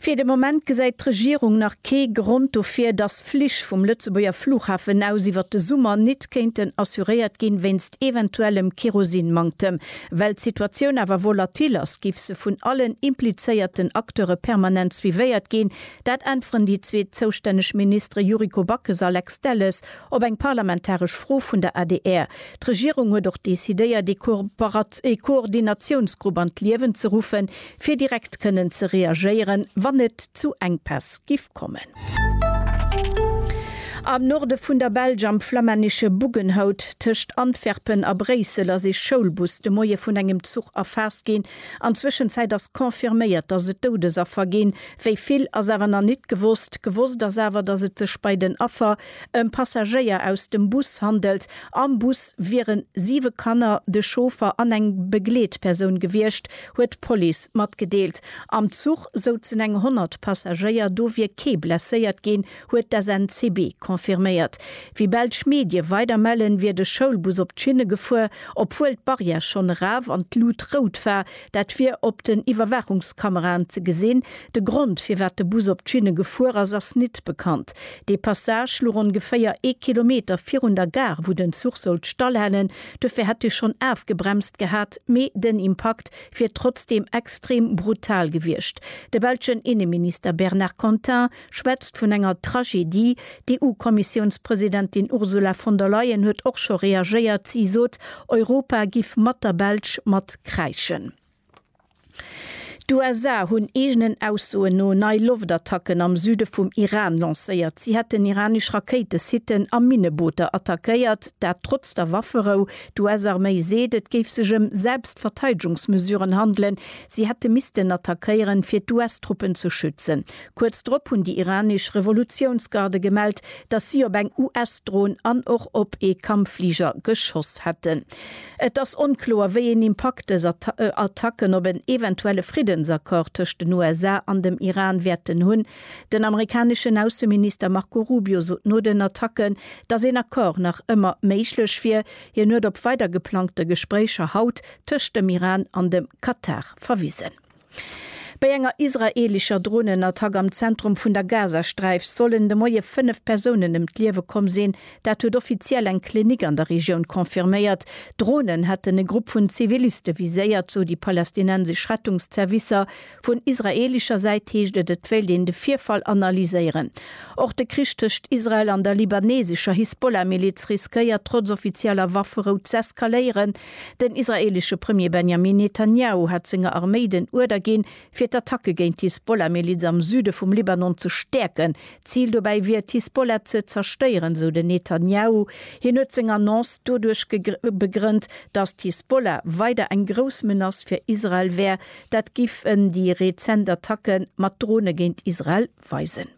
Fir de Moment gesäit d'Regierung nach kee Grond dofir, dass Flich vum Lëtzebuerger Flughafen aus iwwer de Summer nit kéinten assuréiert ginn, wéinst eventuellem Kerosinmanktem. Well d'Situatioun awer volatil ass, giff se vun allen implizéierten Acteure permanent suivéiert ginn. Dat äntweren déi zwee zoustänneg Ministere Yuriko Backes a Lex Delles op eng parlamentaresch Fro vun der adr. D'Regierung huet och decidéiert, ee Koordinatiounsgrupp an d'Liewen ze ruffen, fir direkt kënnen ze reagéieren, wann et zu Enkpäss giff kommen. Am Norde vun der Belsch, am flamännesche Buggenhout tëscht Antwerpen a Bréissel, ass ee Schoulbus de Moie vun engem Zuch erfaasst ginn. An Zwëschenzäit ass confirméiert, datt et Doudesaffer ginn. Wéi vill, ass awer nach nit gewosst. Gewosst ass awer, datt et sech bei den Affer ëm Passagéier aus dem Bus handelt. Am Bus wieren siwe Kanner, de Chauffer an eng Begleetpersoun gewiescht. huet d'Police matgedeelt. Am Zuch souzen eng 100 Passagéier, do wier kee blesséiert ginn, huet d'SNCB confirméiert. Wéi belsch Medie weider mellen, wier de Schoulbus op d'Schinne gefuer, obwuel d'Barrière schonn eraf an d'Lut rout war. Dat wier op den Iwwerwaachungskameraen ze gesinn. De Grond, firwat de Bus op d'Schinne gefuer ass, ass nit bekannt. Dee Passage luch ongeféier ee Kilometer virun der Gare, wou den Zuch sollt stallhalen. Duerfir hätt e schonn afgebremst gehat, mee den Impakt wier trotzdeem extrem brutal gewiescht. De belschen Inneminister Bernard Contin schwätzt vun enger Tragedie. D'EU-Kommissiounspresidentin Ursula von der Leyen huet och scho reagéiert. Si sot, Europa giff mat der Belsch mat kräischen. D'USA hunn eegenen Aussoen no nei Loftattacken am Süde vum Iran lancéiert. Si hätten iranesch Rakéitesitten a Minnebooter attackéiert, dat trotz der Wafferou. D'US-Arméi seet, et géif sech ëm Selbstverteidegungsmesuren handelen, si hätte missten attackéieren, fir d'US-Truppen ze schützen. Kuerz drop hunn déi iranesch Revolutiounsgarde gemellt, datt si op eng US-Dron an och op ee Kampffliger geschoss hätten. Et ass onkloer, wéi een Impakt dës Attacken op en eventuelle Friddensaccord tëscht den USA an dem Iran wäerten hunn. Den amerikaneschen Ausseminister Marco Rubio sot no den Attacken, datt een Accord nach ëmmer méiglech wier. Hien huet op weider geplangte Gespréicher haut tëscht dem Iran an dem Katar verwisen. Bei enger israeelescher Dronenattack am Zentrum vun der Gazasträif sollen de Moie fënnef Persounen ëm d'Liewe komm sinn. Dat huet offiziell eng Klinik an der Regioun confirméiert. D'Dronen hätten e Grupp vun Ziviliste viséiert, sou déi palästinensesch Rettungszervicer. Vun israeelescher Säit heescht et, et wéilt een de Virfall analyséieren. Och de Krich tëscht Israel an der libanesescher Hisbollah-Miliz riskéiert trotz offizieller Wafferou z'eskaléieren. Den israeelesche Premier Benjamin Netanjahu hat senger Arméi den Uerder ginn, fir d'Attacke géint d'Hisbollah-Miliz am Süde vum Libanon ze stäerken. Zil dobäi wier et, d'Hisbollah ze zerstéieren, esou den Netanjahu. Hien huet seng Annonce doduerch begrënnt, datt d'Hisbollah weider eng grouss Menace fir Israel wär. Dat giffen déi rezent Attacke mat Drone géint Israel weisen.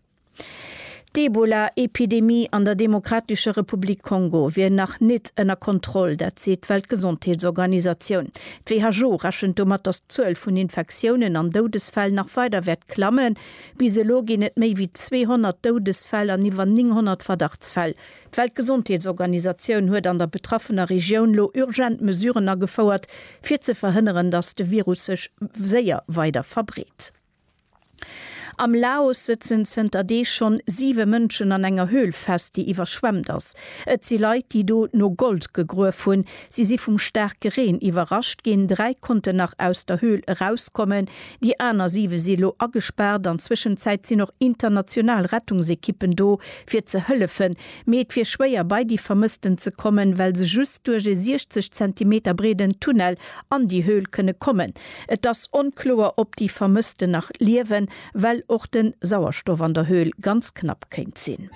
D'Ebola-Epidemie an der Demokratescher Republik Kongo wier nach nit ënner Kontroll, dat seet d'Weltgesondheetsorganisatioun. D'WHO rechent domat, datt d'Zuel vun Infektiounen an Doudesfäll nach weider wäert klammen. Bis elo ginn et méi wéi 200 Doudesfäll an iwwer 900 Verdachtsfäll. D'Weltgesondheetsorganisatioun huet an der betraffener Regioun lo urgent Mesuren agefouert, fir ze verhënneren, datt de Virus sech séier weider verbreet. Am Laos sëtzen zënter Deeg schonn siwe Mënschen an enger Höhl fest, déi iwwerschwemmt ass. Et si Leit, déi do no Gold gegruef hunn. Si si vum staarke Reen iwwerrascht ginn. Dräi konnten nach aus der Höhl erauskommen. Déi aner siwe si lo agespaart. An Zwëschenzäit sinn och international Rettungsekippen do, fir ze hëllefen. Mee et wier schwéier, bei déi Vermëssten ze kommen, well se just duerch e 60 Zentimeter breeden Tunnel an déi Höhl kënne kommen. Et ass onkloer, ob déi Vermëssten nach liewen, well och de Sauerstoff an der Höhl ganz knapp kéint sinn.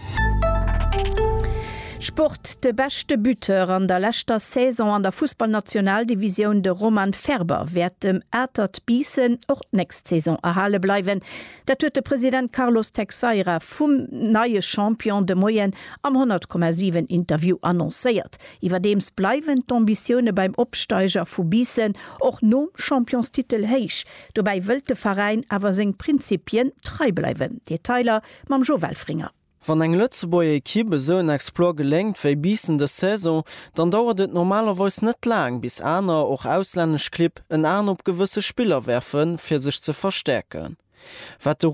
Sport, De beschte Buteur an der leschter Saison an der Fussballnationaldivisioun, de Roman Ferber, wäert dem Atert Biissen och d'nächst Saison erhale bleiwen. Dat huet de President Carlos Texeira vum neie Champion de Moien am 100,7 Interview annoncéiert. Iwwerdeems bleiwen d'Ambitioune beim Opsteiger vu Biissen och nom Championstitel héich. Dobäi wëllt de Veräin awer seng Prinzippien trei bleiwen. Detailer mam Jo Welfringer. Wann eng Lëtzebuerger Ekipp esou en Exploit geléngt wéi Biissen dës Saison, dann dauert et normalerweis net laang, bis aner, och auslännesch Clibb en An op gewësse Spiller werfen, fir sech ze verstäerken. Wat de.